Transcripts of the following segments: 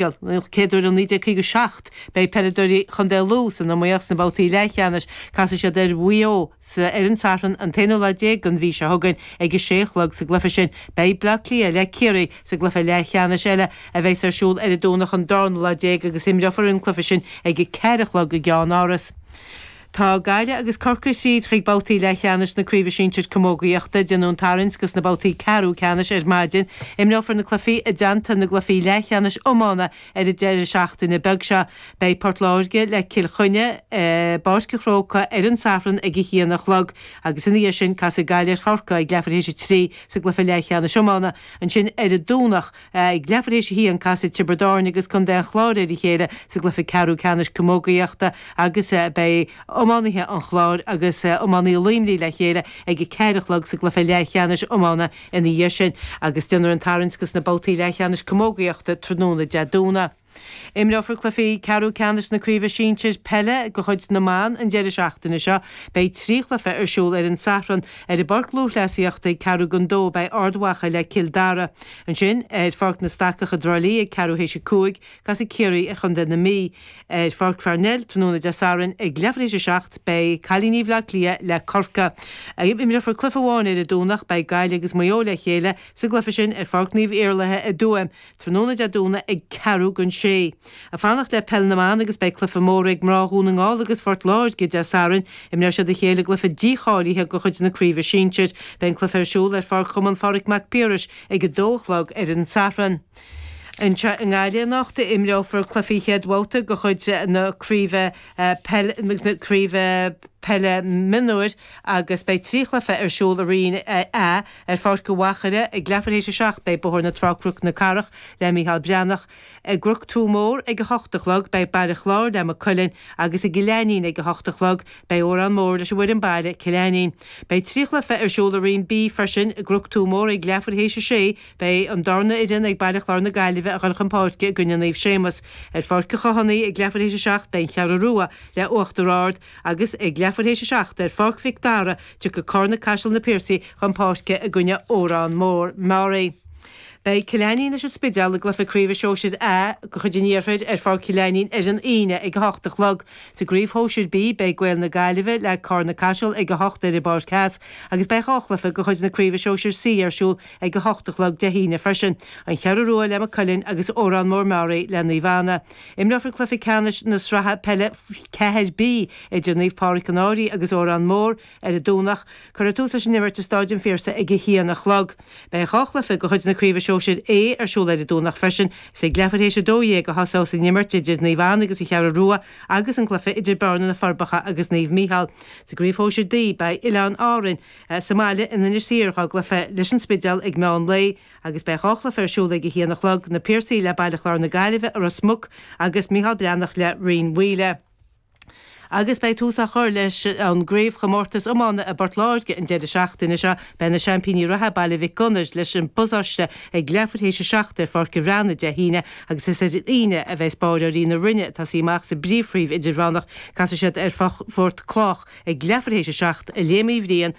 Den chéad uair ó 1957 beidh peileadóirí Chontae Lú san iomaíocht sna babhtaí leathcheannais. Casfaidh siad ar Mhaigh Eo ar an Satharn an t-aonú lá déag den mhí seo chugainn ag a sé a chlog sa gcluiche sin. Beidh Bleá Cliath le Ciarraí sa gcluiche leathcheannais eile a bheas ar siúl ar an Domhnach an darna lá déag agus imreofar an cluiche sin ag a ceathair a chlog i gCeannáras. Tá Gaillimh agus Corcaigh thríd chuig babhtaí leathcheannais na Craoibhe Sinsir Camógaíochta. Déanadh an tarraingt go sna babhtaí ceathrú ceannais ar maidin. Imreofar na cluichí i dteannta na gcluichí leathcheannais iomána ar an deireadh seachtaine beag seo. Beidh Port Láirge le Cill Chainnigh i bPáirc an Chrócaigh ar an Satharn ag a haon a chlog agus ina dhiaidh sin casfaidh Gaillimh ar Chorcaigh ag leathuair théis a trí sa gcluiche leathcheannais iomána. Ansin ar an Domhnach. Ag leathuair théis a haon casfaidh Tiobraid Árainn agus Contae an Chláir ar a chéile sa gcluiche ceathrú ceannais camógaíochta agus beidh iománaithe an Chláir agus iománaithe Luimnigh le chéile ag a ceathair a chlog sa gcluiche leathcheannais iomána ina dhiaidh sin agus déanfar an tarraingt go sna babhtaí leathcheannais camógaíochta tráthnóna Dé Domhnaigh. Imreofar cluichí ceathrú ceannais na Craoibhe Sinsir Peile de chuid na mBan an deireadh seachtaine seo. Beidh trí chluiche ar siúl ar an Satharn. Ar an bPáirc Lúthchleasaíochta ag ceathrú don dó beidh Ard Mhacha le Cill Dara. Ansin ar Pháirc na Stacach i dTrá Lí ag ceathrú théis a cúig casfaidh Ciarraí ar Chontae na Mí. Ar Pháirc Pharnell tráthnóna Dé Sathairn ag leathuair théis a seacht beidh cailíní Bhleá Cliath le Corcaigh. Imreofar cluiche amháin ar an Domhnach. Beidh Gaillimh agus Maigh Eo le chéile sa gcluiche sin ar Pháirc Naomh Iarlaithe i dTuaim. Tráthnóna Dé Domhnaigh ag ceathrú don sé. Ag fanacht le Peil na mBan agus beidh cluife mór ag mná Dhún na nGall agus Phort Láirge Dé Sathairn. Imreoidh siad a chéile i gcluife dícháilithe de chuid na craoibhe sinsir. Beidh an cluife ar siúl ar Pháirc Chumann Phádraig Mac Piarais ag a dó a chlog ar an Satharn. Anseo i nGaillimh anocht imreofar cluifí chéad bhabhta de chuid na craoibhe peile mionúir agus beidh trí chluife ar siúl i Roinn A Ar Pháirc an Mhachaire ag leathuair théis a seacht beidh Bóthar na Trá-Croc na Cathrach le Mícheál Breathnach, i gCroc Tua Mór ag a hocht a chlog beidh Baile Chláir le Maigh Cuilinn agus i gCill Ainnín ag a hocht a chlog beidh Órán Mór leis an bhfoireann baile, Cill Ainnín. Beidh trí chluiche ar siúl i Roinn B freisin, i gCroc Tua Mór ag leathuair théis a sé beidh an darna fhoireann ag Baile Chláir na Gaillimhe ag goil chun páirce i gcoinne Naomh Séamus. Ar Pháirc an Chathánaigh ag leathuair théis a seacht beidh An Cheathrú Rua le Uachtar Ard agus ag leathuair théis a seacht ar Pháirc Mhic Dara Tiocfaidh Carna Caiseal na Piarsaigh chun páirce i gcoinne Órán Mór, Meáraí. Beidh Cill Ainnín leis an Spidéal i gcluiche craoibhe Shóisir A de chuid an Iarthair ar Pháirc Chill Ainnín ar an Aoine ag a hocht a chlog. Sa gcraobh Shóisir B beidh Gaeil na Gaillimhe le Carna Caiseal ag a hocht ar an bPáirc Theas agus beidh dhá chluiche de chuid na craoibhe Shóisir C ar siúl ag a hocht a chlog Dé hAoine freisin, An Cheathrú Rua le Maigh Cuilinn agus Órán Mór, Meáraí le Naomh Anna. Imreofar cluiche ceannais na sraithe peile 4B idir Naomh Pádraig Conroy agus Órán Mór ar an Domhnach. Cuirfear tús leis an imirt i Stáid an Phiarsaigh ag a haon a chlog. Beidh dhá chluiche de chuid na Craoibhe Sóisir A ar siúl ar an Domhnach freisin. Is ag leathuair théis a dó dhéag a thosós an imirt idir Naomh Anna agus An Cheathrú Rua agus an cluiche idir Bearna, Na Forbacha agus Naomh Micheál. Sa gCraobh Shóisir D, beidh Oileáin Árainn sa mbaile in Inis Oírr dá gcluiche leis an Spidéal ag meán lae. agus beidh dhá chluiche ar siúl ag a haon a chlog, Na Piarsaigh le Baile Chláir na Gaillimhe, Ros Muc, agus Micheál Breathnach le Rinn Mhaoile. Agus beidh tús á chur leis an gcraobhchomórtas iomána i bPort Láirge an deireadh seachtaine seo. Beidh na seaimpíní reatha, Baile Mhic Gonair, leis an bPasáiste ag leathuair théis a seacht i bPáirc an Bhreathnaigh Dé hAoine agus is ar an Aoine a bheas báireoirí na Rinne, atá ag suí amach sa bpríomhchraobh idirmheánach, casfaidh siad ar Phort Lách ag leathuair théis a seacht i Léim Uí Bhriain,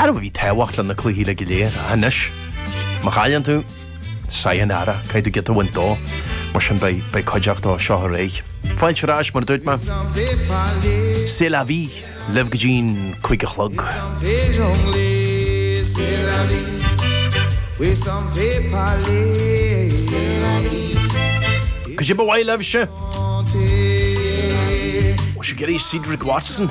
Arbh í tábhacht leis na cluichí go léir? Ah, anois, má chailleann tú, saigh an earra, caithfidh tú giota a bhaint dó, mar sin beidh, beidh cuideachta ó seo, a chara. Fáilte ar ais, mar a dúirt mé. sa studio libh go dtí'n cúig a chlog. Cad é ba mhaith libhse! Ó, sibh ag iarraidh Cedric Watson.